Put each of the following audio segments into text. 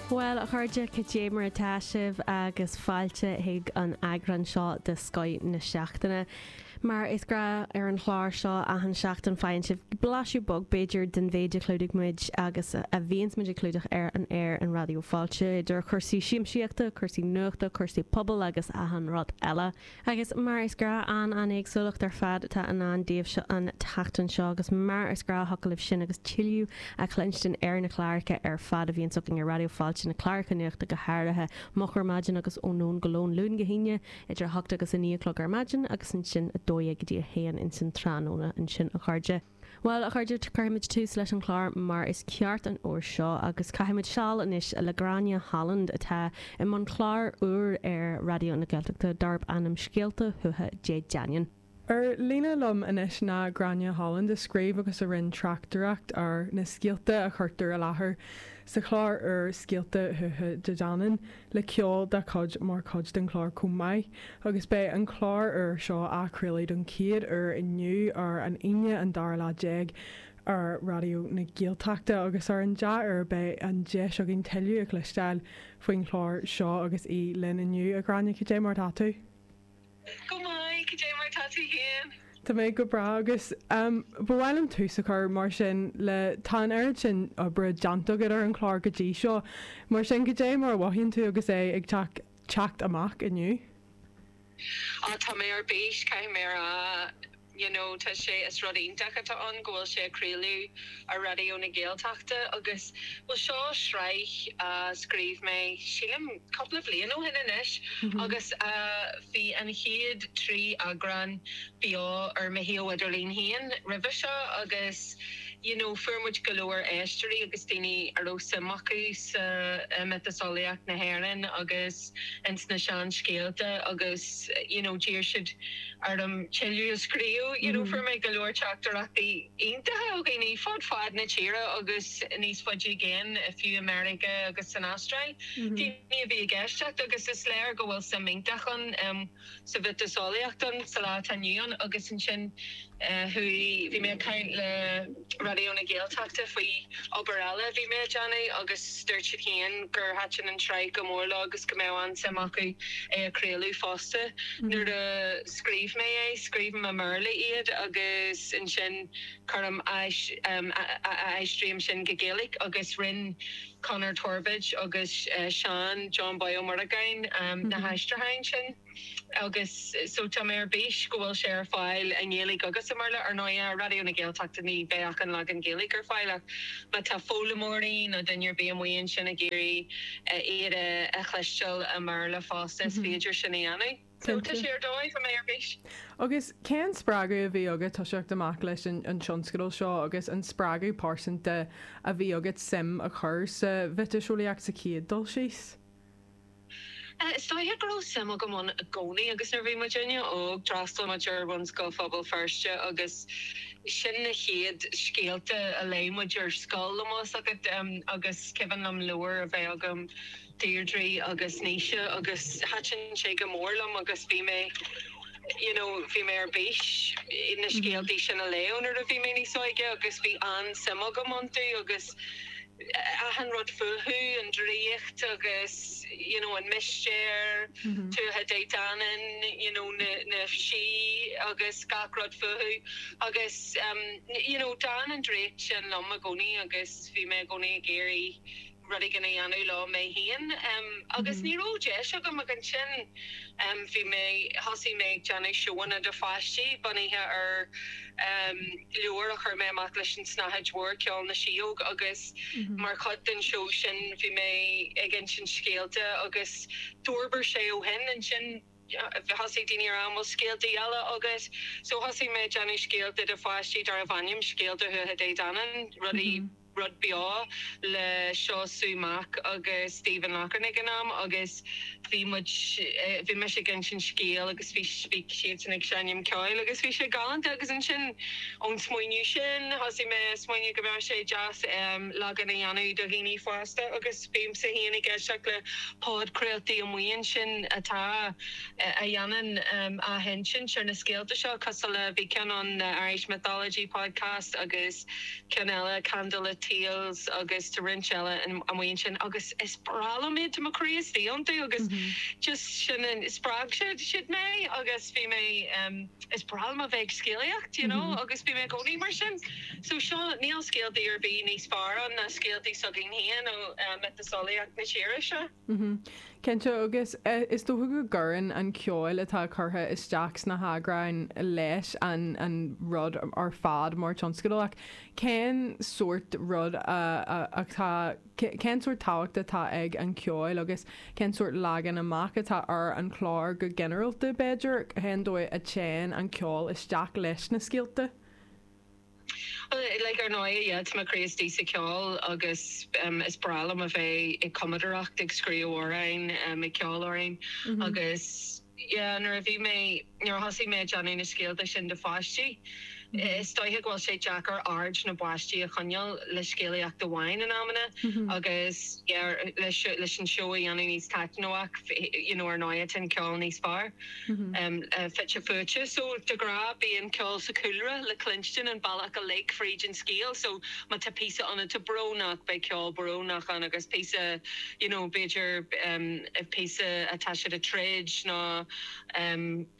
Bhuel, a chairde, cad é mar atá sibh agus fáilte chuig an eagrán seo de Scoith na Seachtaine. Mar is gnáth ar an chlár seo, achan seachtain faigheann sibh blaiseadh beag, b'fhéidir, den mhéid a chlúdaigh muid agus a bhíonns muid ag clúdach ar an aer ar Raidió Fáilte, idir chúrsaí siamsaíochta, cúrsaí nuachta, cúrsaí pobail agus achan rud eile. Agus mar is gnách an-éagsúlacht ar fad atá i ndán daoibhse an tseachtain seo, agus mar is gnách thig libh sin agus tuilleadh a chluinstin ar na cláracha ar fad a bhíonns againn ar Raidió Fáilte, na cláracha nuachta go háirithe, Moch ar Maidin agus Ón Lón go Lón, Luan go hAoine idir a hocht agus a naoi a chlog ar maidin agus ansin a dó dhéag go dtí a haon insan tráthnóna. Ansin a chairde. Bhuel, a chairde, cuirfimid tús leis an chlár mar is ceart an uair seo agus caithfimid seal anois le Gráinne Holland atá i mbun clár úr ar Raidió na Gaeltachta darb ainm Scéalta Thuatha Dé Danann. Ar líne liom anois ná Gráinne Holland a scríobh agus a rinne tráchtaireacht ar na scéalta a chuirtear i láthair sa chlár úr Scéalta Thuatha Dé Danann. le ceol dá chuid mar chuid den chlár chomh maith agus beidh an clár úr seo á chraoladh don chéad uair inniu ar an Aoine an dara lá déag ar Raidió na Gaeltachta agus ar an dea-uair beidh an deis againn tuilleadh a chloisteáil faoin chlár seo agus í linn inniu, a Ghráinne, cad é mar atá tú? Go maith, cad é mar tá tú féin? Tá mé go breá agus ba mhaith liom tús a chur mar sin le tá an oiread sin oibre déanta agat ar an chlár go dtí seo, mar sin cad é mar a mhothaíonn tú agus é ag teacht teacht amach inniu? Tá mé ar bís, caithfidh mé a rá. you know tá sé is rud iontach atá ann go bhfuil sé á chraoladh ar Raidió na Gaeltachta agus bhuel seo sraith a scríobh mé sílim cúpla bliain ó shin anois agus bhí an chéad trí eagrán beo ar mo shuíomh idirlín féin roimhe seo agus you know fuair muid go leor éisteoirí agus daoine a raibh suim acu sa mhiotaseolaíocht na hÉireann agus. ins na sean scéalta agus you know d'iarr siad orm tuilleadh a scríobh you know fuair mé go leor teachtaireachtaí iontacha ó dhaoine fud fad na tíre agus níos faide i gcéin fiú i Meiriceá agus san Astráil daoine a bhí ag éisteacht agus is léir go bhfuil suim iontach ann um, sa mhiotaseolaíocht insan lá atá inniu ann agus ansin chuaigh, bhí mé ag caint le Raidió na Gaeltachta faoi obair eile a bhí mé a déanamh agus dúirt siad féin gur thaitin an tsraith go mór leo agus go mbeadh an-suim acu é a chraoladh fosta. Nuair a scríobh mé é, scríobhaim i mBéarla iad agus ansin cuirim a aistrím sin go Gaeilge agus rinn, Conor Torbóid agus Seán Johnboy Ó Muireagáin na haistriúcháin sin agus so tá mé ar bís go bhfuil sé ar fáil i nGaeilge agus i mBéarla. Ar ndóigh, ar Raidió na Gaeltachta ní bheidh ach an leagan Gaeilge ar fáil ach má tá foghlaimeoirí nó duine ar bith amuigh ansin ag iarraidh iad a chloisteáil i mBéarla fosta is féidir sin a dhéanamh. Cinnte. Tá sé ar dóigh, tá mé ar bís. Agus cén spreagadh a bhí agat toiseacht amach leis an an tionscadal seo agus an spreagadh pearsanta a bhí agat suim a chur sa mhiotaseolaíocht sa chéad dul síos? Is dóiche go raibh suim agam ann i gcónaí agus nuair a bhí muidinne óg d'fhreastail muid ar Bhunscoil Phobal Feirste agus sin na chéad scéalta a léigh muid ar scoil, tá a fhios agat, agus cuimhin liom leabhar a bheith agam, Deirdre agus Naoise agus thaitin sé go mór liom agus bhí mé you know bhí mé ar bís na scéaltaí sin a léamh nuair a bhí mé níos óige agus bhí an-suim agam iontu agus achan rud fúthu, an draíocht agus you know, an mistéir, Tuatha Dé Danann, you know, na, na sí agus gach rud fúthu agus um, you know, d'fhan an draíocht sin liom i gcónaí agus bhí mé i gcónaí ag iarraidh rud éigin a dhéanamh leo mé féin agus ní raibh deis agam ach ansin bhí mé, thosaigh mé ag déanamh seóanna do pháistí bunaithe ar leabhar a chuir mé amach leis An tSnáthaid Mhór, Ceol na Sióg agus mar chuid den seó sin bhí mé ag insint scéalta agus d'fhorbair sé ó shin. Ansin thosaigh daoine a rá an bhfuil scéalta eile agat so thosaigh mé ag déanamh scéalta do pháistí darbh ainm Scéalta Thuatha Dé Danann, rudaí. rud beo le Sue Mac agus Stephen Locharnaigh in am agus bhí muid, bhí mise ag insint scéal agus bhí, bhí siadsan ag seinm ceoil agus bhí sé galánta agus ansin ón smaoineamh sin thosaigh mé ag smaoineamh go mbeadh sé deas leagan a dhéanamh do dhaoine fásta agus bímse féin ag éisteacht le podchraoltaí amuigh ansin atá, a dhéanann athinsint ar na scéalta seo cosúil le, bhí ceann ann The Irish Mythology Podcast agus. ceann eile Candlelit Tales agus tá roinnt eile amuigh ansin agus is breá liom iad, tá mo chroí istigh iontu agus just sin an, spreag siad siad mé agus bhí mé, is breá liom a bheith ag scéalaíocht you know agus bhí mé i gcónaí mar sin so seo, níl scéaltaí ar bith níos fearr ná scéaltaí s'againn féin ó mhiotaseolaíocht na tíre seo. Cinnte, agus is dócha go gcuireann an ceol atá curtha isteach sna heagráin leis an rud ar fad mar tionscadal ach cén sórt rud atá, cén sórt tábhacht atá ag an cheol agus cén sórt leagan amach atá ar an chlár go ginearálta b'fhéidir, cén dóigh a dtéann an ceol isteach leis na scéalta? Like ar ndóigh yeah tá mé craiceáilte faoin cheol agus is breá liom a bheith ag cumadaireacht ag scríobh amhráin ag ceol amhráin agus yeah nuair a bhí mé nuair a thosaigh mé ag déanamh na scéalta sin do pháistí is dóiche go bhfuil sé deacair aird na bpáistí a choinneáil le scéalaíocht amháin in amanna agus yeah leis an seó a dhéanamh níos taitneamhaí you know ar ndóigh tá an ceol. fite fuaite. So de ghnáth bíonn ceol sa chúlra le cluinstin an bealach uilig fríd an scéal. So má tá píosa iontach brónach beidh ceol brónach ann agus píosa you know b'fhéidir píosa atá siad ag troid nó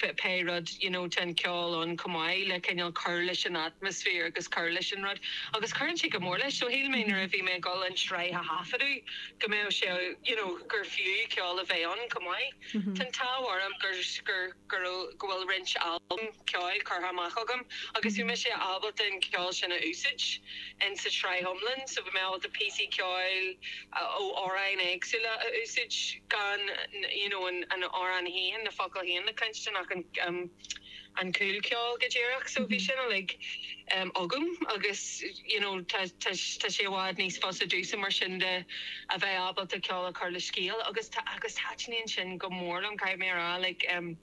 pé rud you know tá an ceol ann chomh maith le cineál cur leis an atmaisféar agus cur leis an rud. Agus cuireann sé go mór leis. So shíl mé nuair a bhí mé ag dul an tsraith a thaifeadadh go mbeadh sé you know gur fiú ceol a bheith ann chomh maith. Tá an t-ádh orm go bhfuil roinnt albam ceoil curtha amach agam agus bhí mise ábalta an ceol sin a úsáid in sa tsraith iomlan so bhí mé ábalta píosaí ceoil ó amhráin éagsúla a úsáid gan you know an amhrán féin, na focail féin a chluinstin ach an. an cúlcheol go díreach so bhí sin uilig agam agus you know tá tá sé i bhfad níos fusa domhsa mar sin de a bheith ábalta ceol a chur le scéal agus tá agus taitníonn sin go mór liom caithfidh mé a rá like em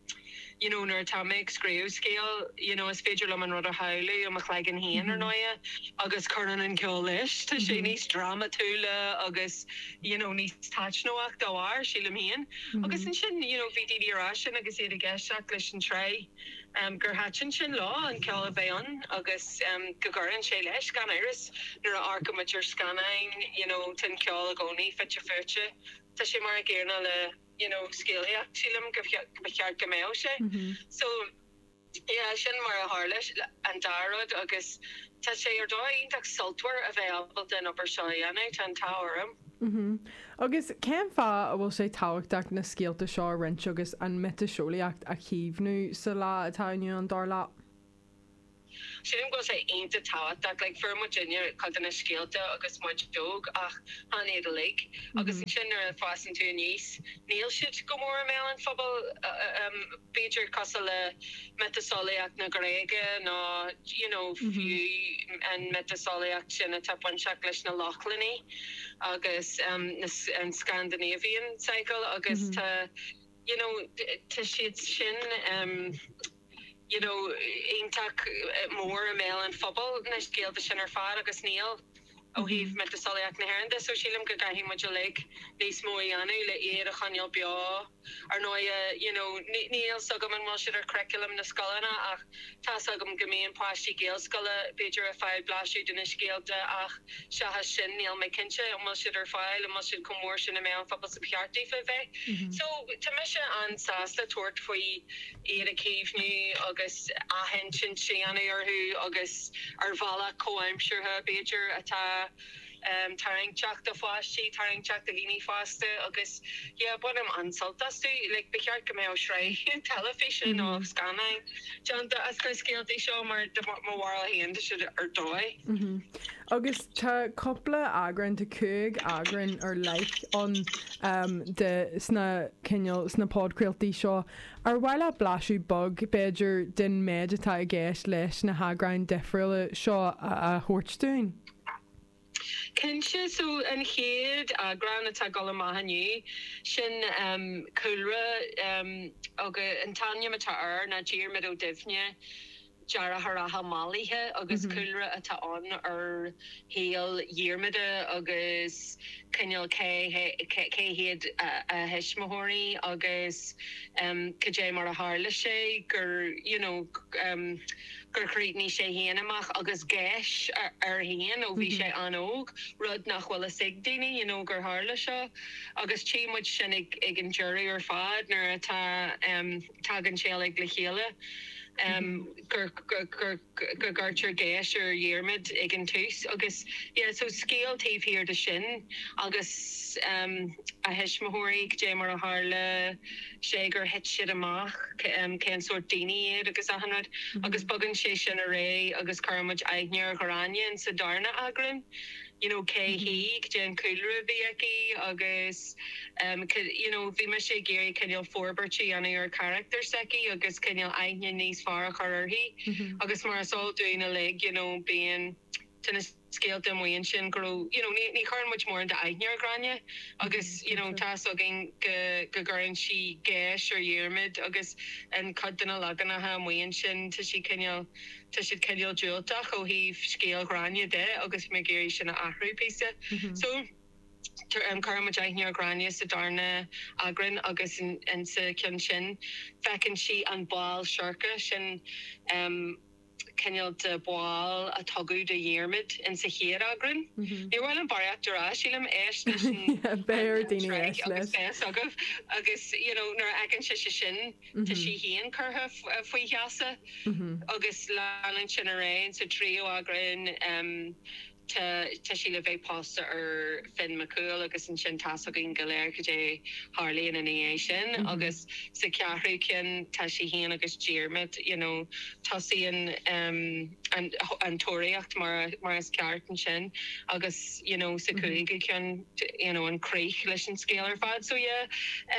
you know nuair atá mé ag scríobh scéal you know is féidir liom an rud a shamhlú i mo chloigeann féin ar ndóigh agus cuireann an ceol leis tá sé níos drámatúla agus you know níos taitneamhaí dá bharr sílim féin. Agus ansin, you know, bhí daoine ag rá sin agus iad ag éisteacht leis an tsraith, em, gur thaitin sin leo, an ceol a bheith ann agus, em, go gcuireann sé leis, gan amhras, nuair a amharcann muid ar scannáin, you know, tá an ceol i gcónaí fite fuaite. Tá sé mar an gcéanna le, you know, scéalaíocht, sílim go, go, ba cheart go mbeadh sé. So. Sea, sin mar a tharla an dá rud agus tá sé ar dóigh iontach sultmhar a bheith ábalta an obair seo a dhéanamh, tá an t-ádh orm. Agus cén fáth a bhfuil sé tábhachtach na scéalta seo a roinnt agus an mhiotaseolaíocht a chaomhnú sa lá atá inniu ann, dar leat? Sílim go bhfuil sé iontach tábhachtach. Like, fuair muidinne cuid de na scéalta agus muid óg ach chan iad uilig agus ansin nuair a fhásann tú aníos níl siad go mór i mbéal an phobail. b'fhéidir cosúil le miotaseolaíocht na Gréige nó you know fiú an mhiotaseolaíocht sin atá bainteach leis na Lochlannaigh agus an Scandinavian cycle agus tá you know tá siad sin you know iontach mór i mbéal an phobail na scéalta sin ar fad agus níl. Ó thaobh miotaseolaíocht na hÉireann de so, sílim go gcaithfidh muid uilig níos mó a dhéanamh le iad a choinneáil beo. Ar ndóighe, you know, ní, ní, níl 's agam an bhfuil siad ar churriculum na scoileanna ach tá 's agam go mbíonn páistí Gaelscoile b'fhéidir ag fáil blaiseadh de na scéalta ach seachas sin níl mé cinnte an bhfuil siad ar fáil, an bhfuil siad chomh mór sin i meon an phobail 's a ba cheart daofa bheith. So, tá mise an-sásta tabhairt faoi. iad a chaomhnú agus athinsint a dhéanamh orthu agus ar bhealach comhaimseartha, b'fhéidir, atá tarraingteach do pháistí, tarraingteach do dhaoine fásta agus yeah bainim an-sult astu. Like ba cheart go mbeadh sraith teilifíse nó scannáin déanta as na scéaltaí seo mar de mo bharúil féin tá siad ar dóigh. Agus tá cúpla eagrán, tá cúig eagrán ar leith ann de sna cineál, sna podchraoltaí seo. Ar mhaith leat blaiseadh beag, b'fhéidir, den méid atá i gceist leis na heagráin difriúla seo a thabhairt dúinn? Cinnte, so an chéad eagrán atá ag dul amach inniu, sin Cúlra agus an t-ainm atá air ná Diarmaid Ó Duibhne. deartháireacha mallaithe agus cúlra atá ann ar shaol Dhiarmada agus cineál cé hiad a thuismitheoirí agus cad é mar a tharla sé gur you know gur chríochnaigh sé féin amach agus geis air féin ó bhí sé an-óg, rud nach bhfuil fhios ag daoine you know gur tharla seo agus tchíonn muid sin ag an deireadh ar fad nuair atá. Tagann sé uilig le chéile gur gcuirtear geis ar Dhiarmaid ag an tús agus yeah so scéal taobh thiar de sin agus a thuismitheoirí, goidé mar a tharla sé gur thit siad amach, cén sórt daoine iad agus achan rud agus bogann sé sin ar aghaidh agus cuireann muid aithne ar Ghráinne sa darna eagrán. you know cé hí, goidé an cúlra a bhí aici agus em you know bhí mise ag iarraidh cineál forbairt a dhéanamh ar charachtar s'aici agus cineál aithne níos fearr a chur uirthi agus mar is eol dúinn uilig you know bíonn tá na scéalta amuigh ansin go raibh you know ní chuireann muid mórán d'aithne ar Ghráinne agus you know tá's againn go go gcuireann sí geis ar Dhiarmaid agus in cuid de na leaganacha amuigh ansin tá sí cineál Tá siad cineál diúltach ó thaobh scéal Ghráinne de agus bhí mé ag iarraidh sin a athrú píosa. So, cuireann muid aithne ar Ghráinne sa darna eagrán agus insa cheann sin feiceann sí an ball seirce, sin cineál de bhall a tugadh do Dhiarmaid insa chéad eagrán. Ní mhillim barraíocht air, sílim, éist leis an sraith agus beidh fhios agaibh agus, you know, nuair a fheiceann sise sin. Tá sí féin curtha faoi gheasa agus leanann sin ar aghaidh sa tríú eagrán. Tá sí le bheith pósta ar Fionn Mac Cumhaill agus ansin tá's againn go léir cad é tharlaíonn ina dhiaidh sin agus sa cheathrú ceann tá sí féin agus Diarmaid, you know, tosaíonn an tóraíocht mar is ceart ansin agus, you know, sa cúigiú ceann. you know an chríoch leis an scéal ar fad so yeah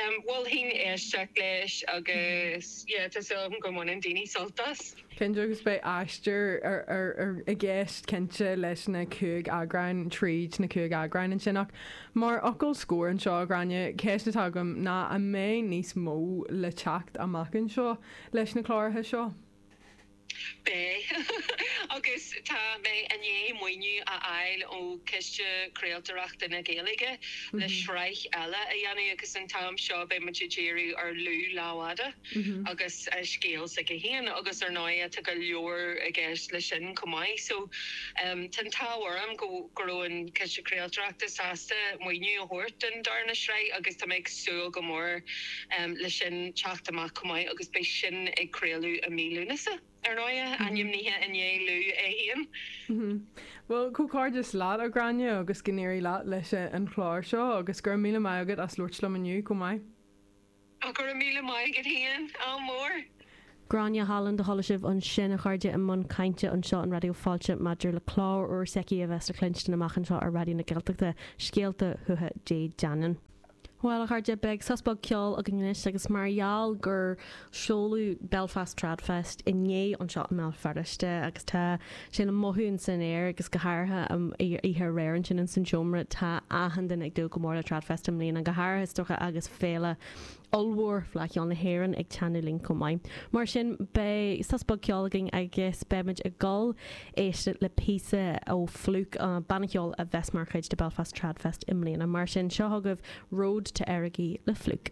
em mholfainn éisteacht leis agus yeah tá súil agam go mbaineann daoine sult as. Cinnte agus beidh aistear i gceist cinnte leis na cúig eagráin tríd na cúig eagráin ansin ach mar fhocal scoir anseo a Ghráinne, ceist atá agam ná an mbeidh níos mó le teacht amach anseo leis na cláracha seo? Beidh. Agus tá mé i ndiaidh maoiniú a fháil ó Chiste Craoltóireachta na Gaeilge le sraith eile a dhéanamh agus an t-am seo beidh muid ag díriú ar Lú Lámhfhada agus a scéal s'aige féin agus ar ndóigh tá go leor i gceist leis sin chomh maith so tá an t-ádh orm go go raibh an Ciste Craoltóireachta sásta maoiniú a thabhairt don darna sraith agus tá mé ag súil go mór le sin teacht amach chomh maith agus beidh sin ag craoladh i mí Lúnasa. Ar ndóigh, ainmnithe i ndiaidh Lú é féin. Bhuel, comhghairdeas leat, a Ghráinne, agus go n-éirí leat leis an chlár seo, agus go raibh míle maith agat as labhairt liom inniu chomh maith. Ach go raibh míle maith agat féin, ádh mór! Gráinne Holland a chuala sibh ansin, a chairde, i mbun cainte anseo i Raidió Fáilte maidir le clár úr s'aici a bheas le cluinstin amach anseo ar Raidió na Gaeltachta, Scéalta Thuatha Dé Danann. Bhuel, a chairde, beidh sos beag ceoil againn anois agus mar gheall gur seoladh Belfast TradFest inné anseo i mBéal Feirste agus tá sin le mothú ins an aer agus go háirithe an oíche aréir ansin ins an tseomra, tá achan duine ag dúil go mór le TradFest i mbliana, go háirithe is dócha agus féile ollmhór Fleadh Cheoil na hÉireann ag teannadh linn chomh maith. Mar sin, beidh sos beag ceoil againn agus beimid ag dul a éisteacht le píosa ó Flook, an banna ceoil a bheas mar chuid de Belfast Tradfest i mbliana. Mar sin, seo chugaibh Road to Errogie le Flook.